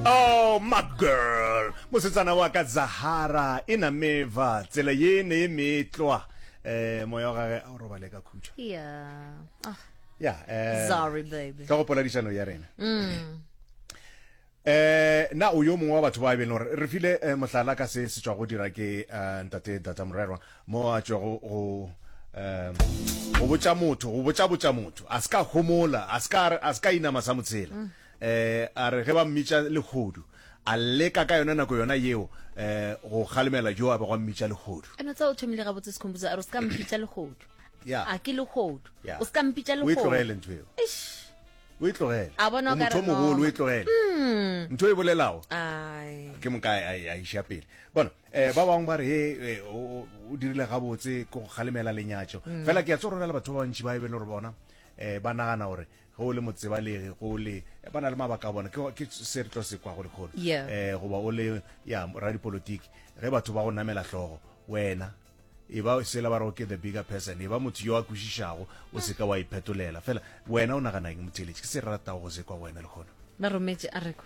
Oh, my girl mosetsana wa ka zahara e na meva tsela ye ne e metlwa eh moya wa gage a o robale ka khutšo Yeah. Ah, ya eh, sorry, baby. ka go poladišano ya rena Mm. eh na o yo mongwe wa batho ba e beng gore re file eh, mohlala ka se se tswa go dira ke eh, ntate data morerwa mo a tšwago go um go botša motho go botša botša motho a se ka homola a se ka a se ka inama sa motshela um a re ge ba mmitša legodu a leka ka yona nako yona yeo um go kgalemela jo a be gwa mmitša legodu eno tsa o thomile ga botse sekhomputsa a re o se ka mpitša legodu ya a ke legodu o se ka mpitša legodu o e tlogele ntho eo o e tlogele a bona o motho mogolo o e tlogele hmm. ntho e bolelago ke moka a iša pele bona Eh, ba bangwe ba re he eh, o, o- o dirile gabotse ke go kgalemela lenyatšo Mm. fela ke a tse gore na le batho ba bantši ba e be le gore bona um ba nagana gore ge o le motsebalegi go le eh, ba na le mabaka a bona ke ke se re tlo se kwa go lekgolo Yeah. um goba o le ya radipolotiki ge batho ba go namela hlogo wena e ba sela ba rego ke the bigger person e ba motho yo a kwešišago o se ka wa iphetolela fela wena o naganang motheletši ke se re ratago go se kwa go wena lekgono ba rometše a rekwa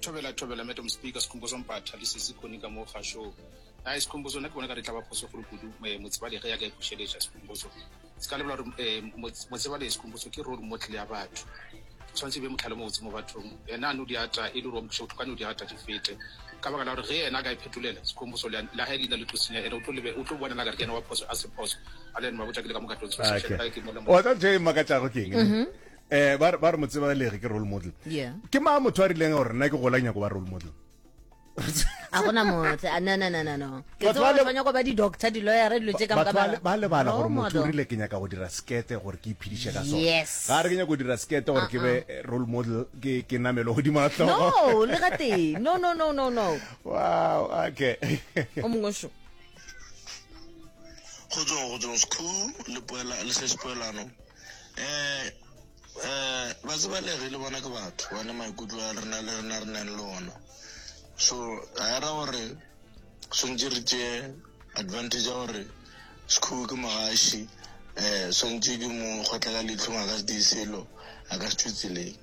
Thobela thobela madam speaker Sikhumbuzo Mpatha le sisi Connie ka mo ga show. Ai Sikhumbuzo nna ke bona ka re tla ba phoso golo kudu eh, Motsebale ge ya ka e bušeletša Sikhumbuzo. Se ka lebela gore eh, Mots- Motsebale Sikhumbuzo ke role model ya batho. Tshwanetse e be motlhale mobotse mo bathong. Yena a no di ata e le gore wa mo thuša bohloko a no di ata di fete. Ka baka la gore ge yena a ka e phetolela Sikhumbuzo le le hae leina le tlo senya ene o tlo lebe o tlo bonela ka re ke yena wa phoso a se phoso. A le yena mabotša ke le ka moka tlo tshoswa. Okay. Ke mola mo- wa tla ntho e makatšago ke eng ne? eh ba ba re mo tseba lege ke role model Yeah. ke ma motho a rileng gore nna ke gola nyako ba role model a gona motle a no no no no no ke Batho tseba ba le- gore tshwanyo go ba di-doctor di-lawyere dilo tse ka batho ba le- ba lebala gore Role motho o model. rile ke nyaka go dira skete gore ke iphediše ka sone Yes. ga re ke nyaka go dira skete gore ke be eh, role model ke ke namelo godimo a tlhogo no le gatee no no no no no wow okay o mongwe šo kgotsong kgotsong school le poela le se sepoelano um um ba tseba le re le bona ke batho bane maikutlo a rena le rena re nang le ona so ga era gore swantse re tšee advantage ya gore sekhuo ke mogaši um swantse ke mo kgotla ka leitlhong a ka se di selo a ka se thutseleng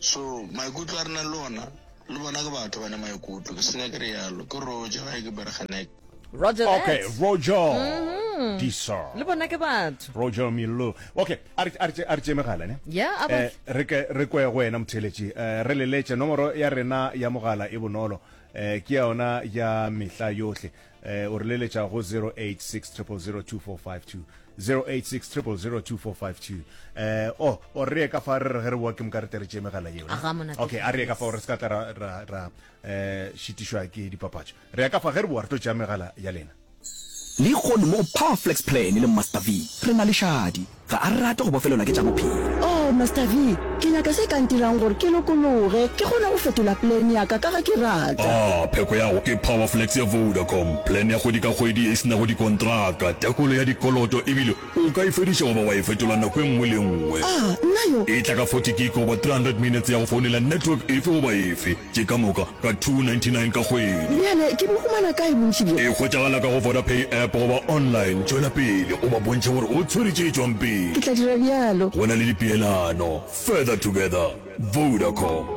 so maikutlo a re nang le ona Le bona ke batho ba ne maikutlo, ke seka ke re yalo. Ke Roger gae ke Bergenek. Roger that. Okay, Roger. Mm. Disa. Le bona ke batho. Roger Millo. Okay, a re a re a re tšeme gala ne. Yeah, a ba. Eh, re ke re kwe go wena motheletši. Eh, re leletše nomoro ya rena ya mogala e bonolo. Eh, ke yona ya mehla yohle. eh, o re leletša go 0860002452 0860002452 eh o oh, o re ka fa re re re wa ke mka re tere tše megala yeo okay a re ka fa o re se ka tla ra ra ra eh shitishwa ke dipapatšo re ka fa ge re bo re tlo tša megala ya lena le kgone mo powerflex plan le master v re na le šadi Ga a rate go bofelelwa ke tša bophelo. Oh, Master V, ke nyaka se ka ntirang gore ke lokologe, ke kgone go fetola plan ya ka, ka ge ke rata. Ah, pheko yago ke Powerflex ya Vodacom, plan ya kgwedi ka kgwedi e se nago dikontraka, tekolo ya dikoloto ebile o ka e fediša goba wa e fetola nako e nngwe le e nngwe. Ah, nna yo! E tla ka forty gig goba three hundred minutes ya go founela network efe goba efe. Ke ka moka ka 299 ka kgwedi. Bjale ke bo humana kae bontši bjo? E hwetšagala ka go Vodapay app goba online. Tšwela pele o ba bontšhe gore o tshwere tše tšwang pele. Ke tla dira bjalo. Go na le dipeelano. Further together. Vodacom.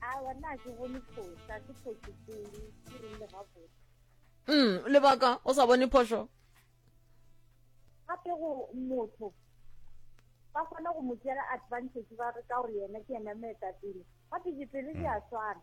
awa nna ke bone phosa ke phoso pele ke rile gabotse mm lebaka o sa bone phoso gape go motho ba kgona go mo tšela advantage ba re ka gore yena ke yena meetapele gape dipele di a mm. swana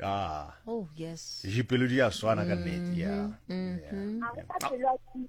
Ah. Oh yes. Jipelo di a swana ka nnete. Yeah. Mm-hmm. Mm-hmm. Yeah. yeah.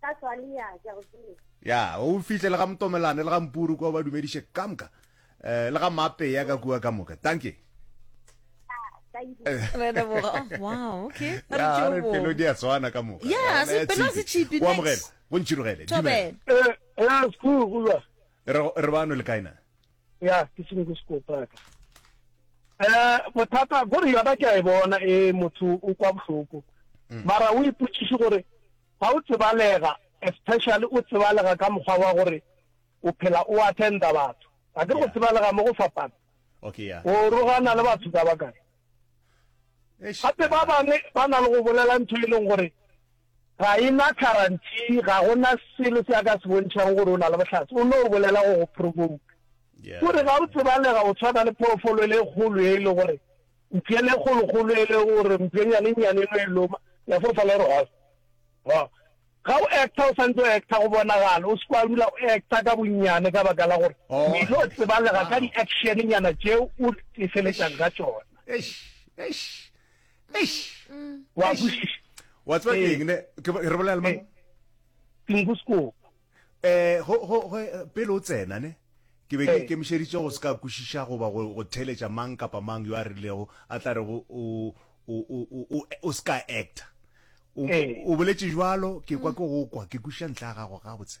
ka tswale ya ke go tsere ya o fihle le ga motomelane le ga mpuru kwa ba dumediše ka moka um le ga mape ya ka kua ka moka thank you pelo di a tshwana ka moka bontšhirogele re bano le kaena ya ke sengwe ke sekopaka um bothata gore yona ke a e bona e motho o kwa bohloko mm. mara o ipotsiše gore ga o tsebalega especially o tsebalega ka mokgwa wa gore o phela o attenda batho a ke go tsebalega mo go fapana o rogana le batho ka bakae gape ba bangwe ba na le go bolela ntho e leng gore Ga e na kharanthi, ga go na selo se a ka se bontšhago gore o na le bohlatse, o no bolela go go provouka. O re ga o tsebalega o tshwana le phoofolo e le kgolo e le gore mpšeng le kgolokgolo e le gore mpšenyane e nnyane e no e loma, ya fofa le gore ho. Ga o acta o sa ntse o acta go bonagala, o se kwa dula o acta ka bonnyane ka baka la gore o ile o tsebalega ka di-action-nyana tšeo o tefeletšang ka tšona. wa kwešiša wa tseba ke eng ne ke re bolela le mang tingusko eh go go go pele o tsena ne ke be ke kemišeditse go se ka kwešiša goba go go theletša mang kapa mang yo a rilego a tla re go o o o o o se ka actor o o boletše jwalo ke kwa ke go kwa ke kwešiša ntlha ya gago gabotse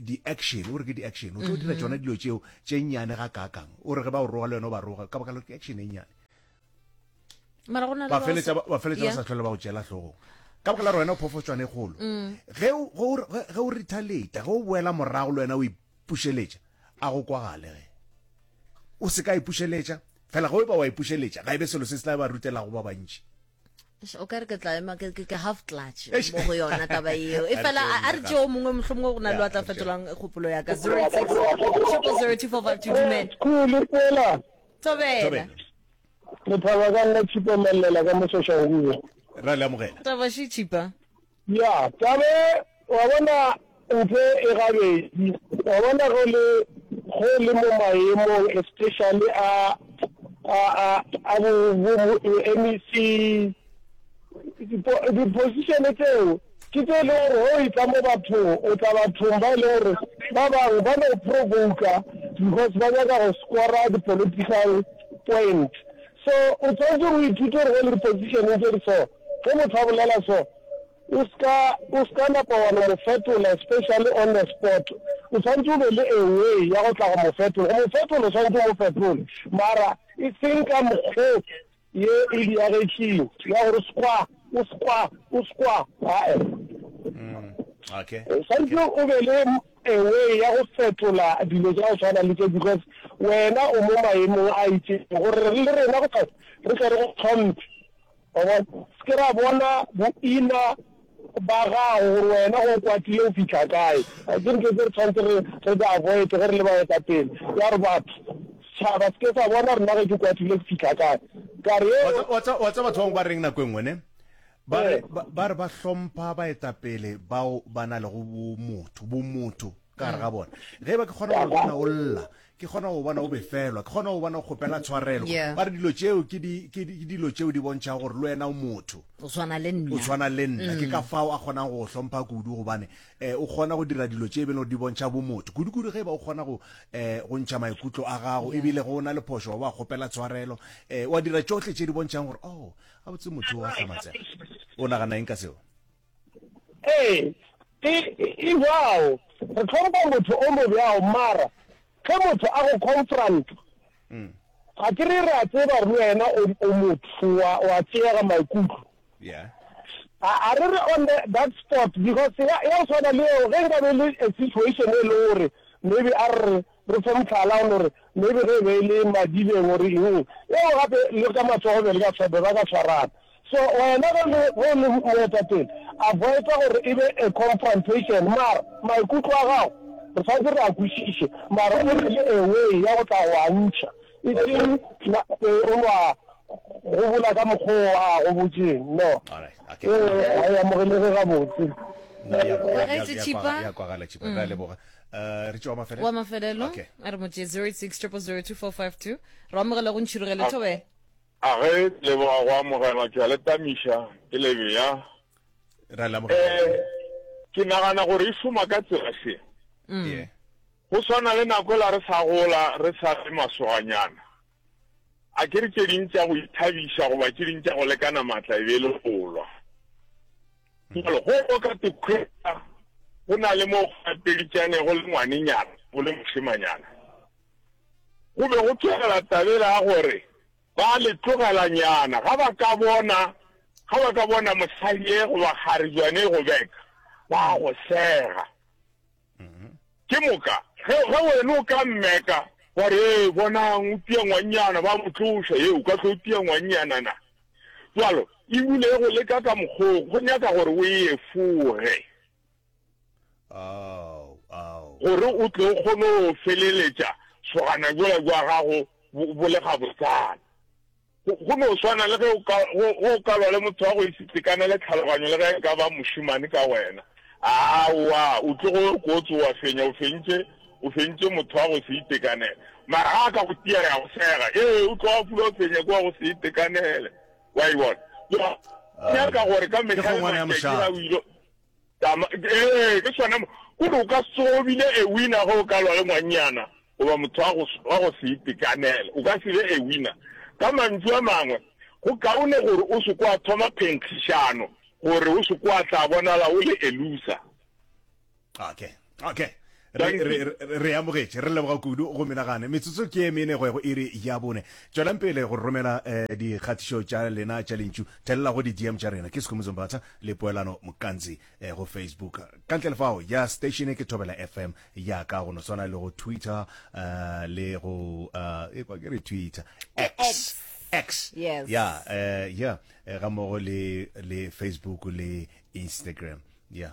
di-action o re ke di-action o tlo dira tsona mhm. dilo tseo tse nnyane ga kakang o re ge ba o roga le wena o ba roga ka baka le ke action e nnyane ba feletsa ba sa tlhole ba go tšela tlhogong ka baka la rona phofotswane kgolo mm. ge o rethaleta ge o boela morago le wena o ipušeletša a go kwagale ge o se ka ipušeletša fela ge o ba wa ipušeletša ga e be selo se se tla ba rutelago ba bantši o ka re ke tla ema ke ke half clutch mo go yona taba eo e fela a re tšeo mongwe motlho mongwe go na le wa tla fetolang kgopolo ya ka zero six triple zero two four five two dumela kule tsela tobela lethaba ka nna tshipa mallela ka mosoša go bua ra le amogela taba shi tshipa Ya, tabe, wa bona, mpe e gabedi, wa bona, ge le, ge le mo maemong especially a, a, a, a bo, bo, bo MEC, dipo, diposition tseo, ke tse e lego gore ge o etla mo bathong, o tla bathong ba e lego gore ba bangwe ba no provoka because ba nyaka go score di-political point. So, o swanetše o ithute gore go le dipositšheneng tše di so, ge motho a bolela so, o se ka, o se ka napa wa no mo fetola, especially on the spot. O swanetše o be le a way ya go tla go mo fetola. Go mo fetola o swanetše o mo fetole, mara e seng ka mokgo ye e diagetšeng ya gore skwa, o skwa, o skwa, ae. Okay. O swanetše o be le a way ya go fetola dilo tša go tshwana le tše because wena o mo maemong a itšego gore le rena go fela re tle re go tlhomphe wa bona se ke ra bona boina ba gago gore wena go kwatile o fitlha kae a ke ntho tse re tshwanetse re re di avoid ge re le baetapele ya re batho setšhaba se ke sa bona rena ge ke kwatile ke fitlha kae kare wa tseba batho bangwe ba reng nako e nngwe ne Ba re, ba, ba re ba hlompha baetapele bao ba na lego bomotho, bomotho ka gare ga bona. Ge e ba ke kgona go go bona o lla, ke kgona go go bona o befelwa, ke kgona go go bona o kgopela tshwarelo, Yeah. ba re dilo tšeo ke di, ke di, ke dilo tšeo di bontšhago gore le wena o motho, O tshwana le o nna. tshwana le nna. Ke ka fao a kgonang go go hlompha kudu gobane um o kgona go dira dilo tše e beng gore di bontšha bomotho. Kudu-kudu ge e ba o kgona go um go ntšha maikutlo a gago ebile ge o na le phošo wa ba kgopela tshwarelo, um wa dira tšohle tše di bontšhang gore oh a botse motho wa hlamatsega o nagana eng ka seo ee e jao re tlhompha motho o mo bjao mara ge motho a go confront mm. ga ke re re a tseba re wena o motho wa tseega maikutlo yeah a re re on the, that spot because ya o tshwana le eo ge nka be le a situation e le gore maybe a re Re fe mohlala, o no re, Maybe ge e be e le madibeng or eng, eo gape le ka matsogo be le ka swaba, ba ka swarana. So wena ge le, ge o le moetapele, avoida gore e be a confrontation, mara maikutlo a gago re swanetše re a kwešiše, mara o be le a way ya go tla go a ntšha, e seng nate o no a gobola ka mokgwa o a go botšeng, no, eo ga e amogelege gabotse. Nna ya, ya, ya, ya, ya kwagala, ya kwagala, Tšhipa. Re a leboga. Uh, re tšewa mafelelo wa mafelelo okay. a re motse 06 0002452 re amogela go ntšhirogele thobe a ge leboga go amogela ke le tamiša ke lebeya ra le amogela eh, ke nagana gore e šoma ka tsela se mm. go swana le nako la re sa gola re sa le masoganyana A ke re tše ding tša go ithabiša goba tše ding tša go lekana matla e be e le go lwa? Jalo go o ka te khwetsa go na le mo gatelitšane go le ngwanenyana go le mošemanyana. Go be go tšwegela tabela ya gore ba le tlogelanyana ga ba ka bona ga ba ka bona mosadi e goba kgarejwane e go beka ba go sega. Ke moka, ge wena o ka mmeka, wa re, Ee, bonang, o tia ngwannyana, ba mo tloša. Ee, o ka hlwa o tia ngwannyana na? Bjalo, e bule e go leka ka mokgong, go nyaka gore o e efoge. Gore o tle o kgone go feleletša sogana jola jwa gago bo le gabotsana. Go no swana le ge ge o ka lwa le motho wa go ise tekanele tlhaloganyo le ge e ka ba mošemane ka wena. Aowa, o tlo go yo kotsi, o a fenya o fentše, o fentše motho wa go se itekanele. Mara ga a ka go tia, ya go sega. Ee, o tlo a fula o fenya ke wa go se itekanele. Wa e bona? Go nyaka gore ka mehla le matšatši ga o ile. Tama, ee, ke sona mo. Gore o ka se obile a winner ge o ka lwa le ngwannyana goba motho wa go, wa go se itekanela. O ka se be a winner. Ka mantšu a mangwe, go kaone gore o se kwa thoma phenkgišano gore o se kwa tla bonala o le a loser. Okay. okay re amogetše re leboga kudu go menagane metsotso ke e mene go ya go iri ya bone tswelang pele go romela um eh, dikgatišo tša lena tša lentšu thelela go di-dm tša rena ke sekhomotso mbatha le poelano mokantsi um eh, go facebook ka ntle lefao ya station ke thobela fm ya ka go no tshwana le go twitter uh, le go uh, e kwa ke re twitter x, x. X yes yeah uh, yeah ga mmogo le le Facebook le Instagram yeah